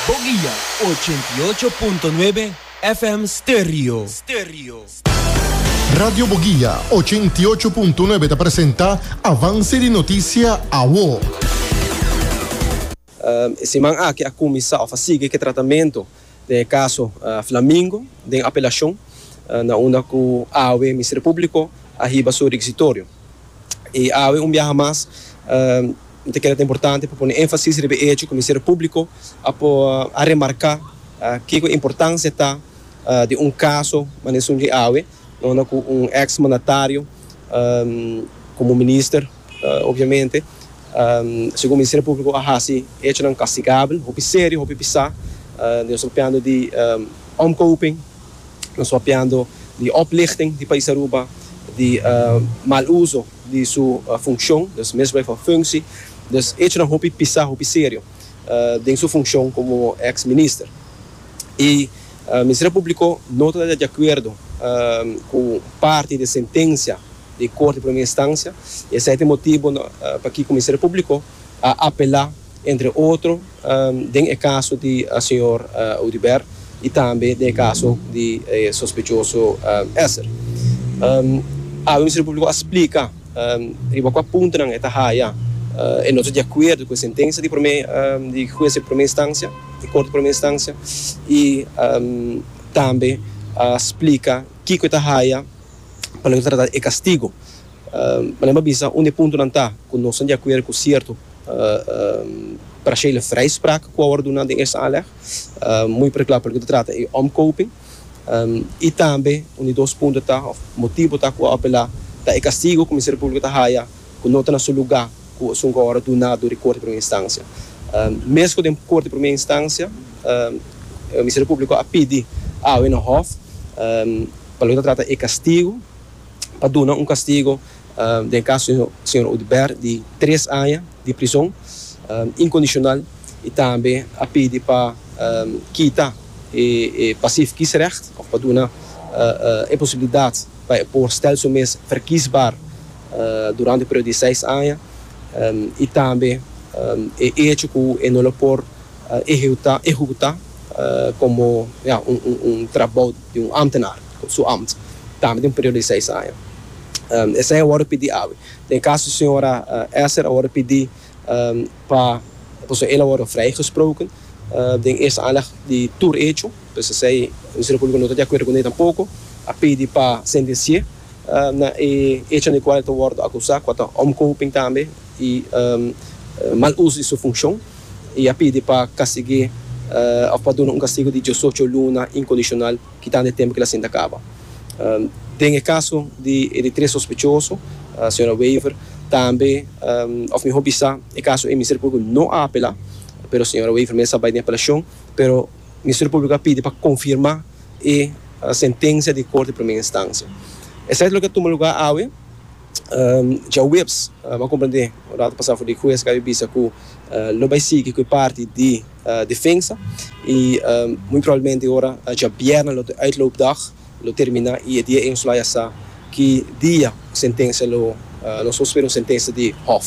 Bo guia ochenta i ocho punto nuebe FM Stereo. Radio Bo Guia ochenta i ocho punto nuebe ta presenta Avance di Noticia Awo. E siman aki a kuminsá òf a sigui ku e tratamentu den e kaso Flamingo den apelashon na unda ku awe Ministerio Públiko a hiba su requisitorio. i awe un biaha mas mi ta keda ta importante pa pone énfasis riba e hecho ku Ministerio Públiko a por a remarká kiko e importansia ta di un kaso mane esun di awe, dónde ku un eks mandatario komo minister obviamente segun Ministerio Públiko a hasi hechonan kastigabel hopi serio hopi pisá nos ta papiando di omkoping. Nos papiando di oplichting di Pais Aruba, di mal uso di su funcion, dus misbruik van functie, dus echonan hopi pisa, hopi serio den su funcion como ex minister. Y Ministerio Publico no ta di acuerdo cu parti di e sentencia di Corte di Primera Instancia y esey ta e motibo pakico Ministerio Publico a apela entre otro den e caso di señor Audibert y tambe den e caso di e sospechoso Esser. Awe Ministerio Publico a splica riba cua puntonan e ta haya e no ta di acuerdo cu e sentencia di prome di Hues di Prome Instancia, di Corte di Prome Instancia, y tambe a splica kico e ta haya pa lo e ta trata e castigo. Mane bo a bisa un di e puntonan ta cu nos ta di acuerdo cu cierto. Prachele vrijspraak ku awor duna den es aanleg muy perkla pasobra ku ta trata e omkoping i tambe un di dos punto ta òf motibu ta ku a apelá ta e kastigu ku Ministerio Públiko ta haya ku no ta na su lugá ku esun ku awor a duna dor di Korte di Primera Instansia. Meskos den Korte di Primera Instansia Ministerio Públiko a pidi awe na hòf pa loke ta trata e kastigu. pa duna un kastigo den kaso di señor Udbert di tres aña di prison incondicional y tambe a pidi pa kita e pasief kiesrecht of pa duna e posibilidad pa e por stel su mes verkiesbaar durante e periodo di seis aña y tambe e hecho cu e no lo por ehecuta como ya un trabao di un ambtenaar. su amt, tambe den un periodo di seis aña. Esei a wòrdu pidi awe. Den kaso di señora Esser a wòrdu pidi pa pasobra el a wòrdu vrijgesproken den eerste aanleg di tur echo, pues esei Ministerio Públiko no ta di akuerdo kuné tampoko, a pidi pa sentens'é na e echo den kual el ta wòrdu akusá, kua ta omkoping tambe i mal uso di su funshon, i a pidi pa kastig'é òf pa duna un kastigu di diesocho luna inkondishonal. Kitando e tempu kil a sinta kaba. Den e kaso di e di tres sospechoso, señora Wever, tambe, òf mihó bisa, e kaso ei Ministerio Públiko no a apelá, pero señora Wever mes a bai den apelashon, pero Ministerio Públiko a pidi pa konfirmá e sentensia di Korte di Primera Instansia. Esei ta loke a tuma lugá awe. Djaweps a ban komprendé un ratu pasá for di ku e SKB bisa ku lo bai sigui ku e parti di defensa i muy probablemente ora djabièrnè lo te uitloopdag lo terminá i e dia e nos lo haya sa ki dia sentensia lo nos lo spera un sentensia di hòf.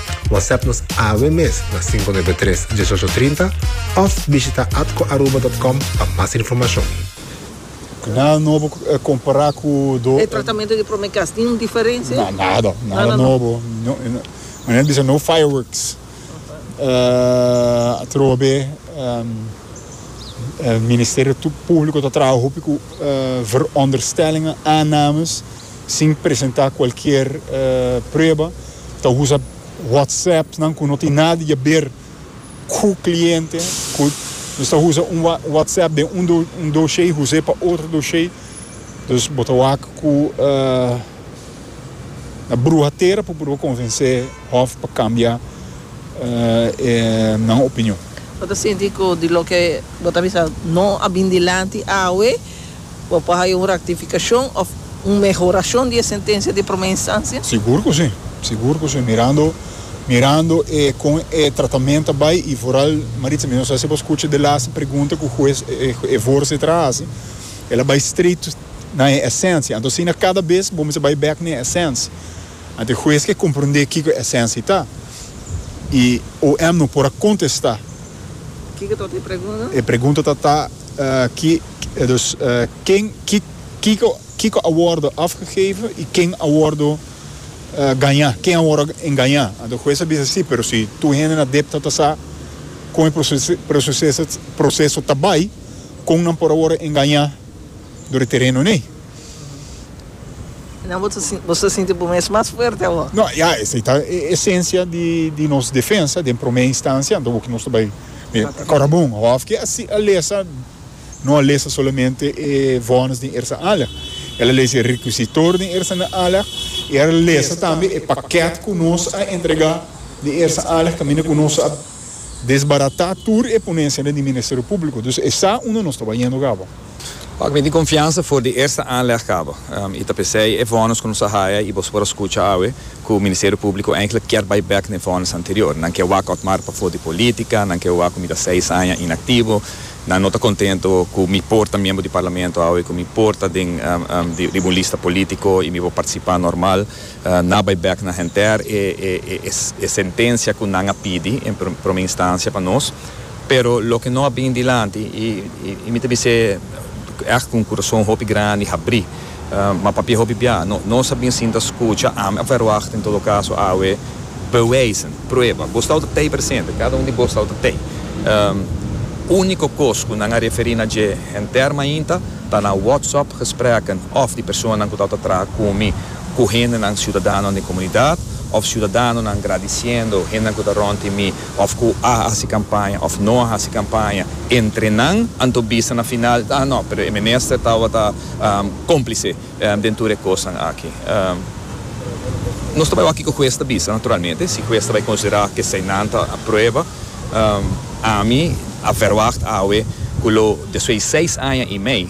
WhatsApp nos awe mes na 593 1830 of bishita atcoaruba.com pa mas informacion. Nada nobo compara cu do. E tratamento di prome cas tin un diferencia? Na, nada, nada nobo. Manera bisa no fireworks. Atrobe Ministerio Publico ta traha hopi cu veronderstellingen, aannames. sin presenta cualkier prueba ta usa whatsapp nan cu no tin nada di haber cu cliente cu nos ta usa un whatsapp den un doshey huse pa otro doshey dus bo ta wak cu na bruha tera pa proba convence hof pa cambia nan opinion. Bo ta sinti cu di loke bo ta bisa no a bin dilanti awe. Bo por haya un rectificacion of un mehoracion di e sentencia di prome instancia? Sigur cu si, sigur cu si. Mirando, mirando e con e tratament ta bay y vooral Maritza, mi no sa si bo scucha de laatste pregunta cu huez, e voorzitter a haci, el a bay straight na e esencia. Anto asina cada bes bo mester bay back na e esencia. Anto e huez ke comprende kico e esencia ta y OM no por a contesta. Kico ta ota e pregunta? E pregunta ta ta. Dus, ken, kiko, kiko a wordo afgegeven y ken a wordo gaña, ken a wordo engaña? Anto e hues a bisa, si, pero si tur hende na dep ta tasa kon e proceso ta bay, kon nan por a wordo engaña dor e tereno n'ey? Nan bo ta sinti bo mes mas fuerte awor. No, ya esei ta e esencia di nos defensa den prome instancia, anto bo ke nos ta bai kora bon hof ke a si a lesa, no a lesa solamente e vones den ersa ala, el a lesa e requisitor den ersa na ala y el a lesa tambe e paket ku nos a entrega den ersa ala kaminda ku nos a. Desbaratá tur e ponesianan di Ministerio Públiko. Dus e sa unda nos ta bayendo kaba. Pak mi tin konfiansa for di eerste aanleg kaba. I ta p'esei e vònus ku nos a haya i boso por a skucha awe ku Ministerio Públiko enklik kier bai bèk na e vònus anterior. Nan ke wak Otmar pa for di polítika, nan ke wak ku mi ta seis aña inaktivo, nan no ta kontentu ku mi por ta miembro di Parlamento awe, ku mi por ta den di un lista polítiko i mi por partisipá normal. Nan a bai bek na henter e sentencia cu nan a pidi en prome instancia pa nos, pero loke no a bin dilanti y mi ta bis'e echt cu un curason hopi grandi habri, ma papia hopi bia, nos a bin sinta scucha, ami a verwacht en todo caso awe bewijzen, prueba, bo stau ta tey presente, cada un di bo stau ta tey. Unico cos cu nan a referi na dje henter mainta ta na WhatsApp gesprekken of di personanan cu tau ta traha cu mi, cu hendenan ciudadanonan den comunidad of ciudadanonan gradiciendo hendenan cu ta rond di mi of cu a haci campaña of no a haci campaña entre nan, anto bisa na final ah no pero e minister tawata complice den tur e cosnan aki. Nos ta bay wak kico huez ta bisa naturalmente, si huez ta bay considera cu esey nan ta prueba, ami a verwacht awe cu lo despues di seis aña y mei,